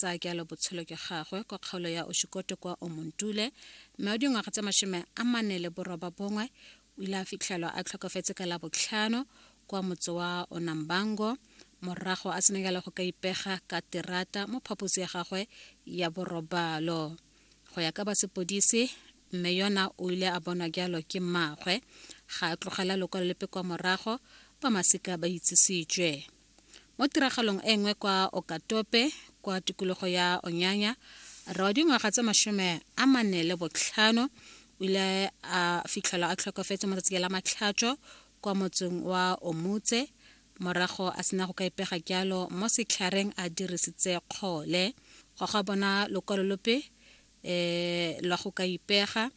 tsa kealo botshelo ke gagwe kwa kgaolo ya oshikoto kwa omontule mme o dingwaga tse mashome a mane le boroba bongwe o ile a fitlhelwa a tlhokafetse ka labotlhano kwa motse wa onambango morago a senekela go ka ipega ka terata mo phaposi ya gagwe ya borobalo go ya ka ba sepodisi mme yona o ile a bonwa jalo ke mmaagwe ga a tlogela lokwalo lepe kwa morago ba masika ba itsisitswe Mo tiragalong e nngwe kwa Okatope, kwa tikologo ya Onyanya, rre wa dingwaga tse masome a mane le botlhano o ile a fitlhelwa a tlhokofetse mo tsatsi la matlhatšo kwa motseng wa Omutse morago a sena go ka ipega jalo mo setlhareng a dirisitse kgole. Go ga bona lokwalo lope um la go ka ipega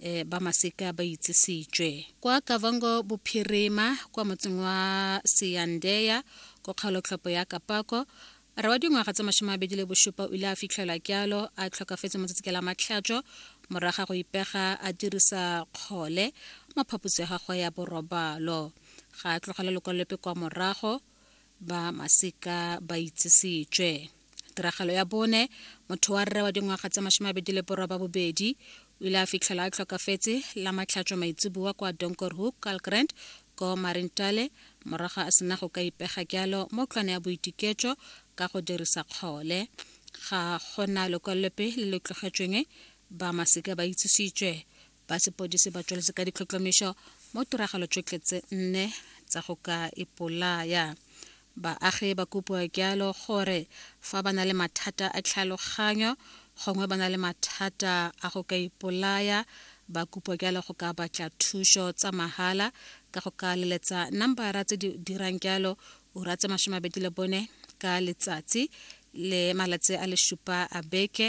um ba maseka ba itsisitswe kwa kavango bophirima kwa motseng wa seyandeya ko kgaolotlhopo ya kapako re wa dingwaga tsa masome a bedi le bosupa o ile a fitlhelwa kyalo a tlhokafetse motsatsi ke la matlhatšo moraga go ipega a dirisa kgole mo phaposi ya gagwe ya borobalo ga a tlogela lekwalolepe kwa morago ba masika ba itsisitswe tiragalo ya bone motho wa rre wa dingwaga tse masome a bedi le borwa ba bobedi o ile a fitlhela a tlhokafetse la matlhatšo maitseboa kwa donkorhook calgrand ko marintale morago a sena go ka ipega jalo mo tlwana ya boitiketšo ka go dirisa kgole ga gona lekwalope le le tlogetšweng ba masika ba itsisitswe ba sepodisi ba tsweletse ka ditlhotlhomišo mo tiragalo tšotlhe tse nne tsa go ka ipolaya baagi ba kopiwa jalo gore fa ba na le mathata a tlhaloganyo gongwe ba na le mathata a go ka ipolaya ba kopiwa jalo go ka batla thuso tsa mahala ka go ka leletsa nambara tse di dirang jalo ura tse masome mabedi le bone ka letsatsi le malatsi a le supa a beke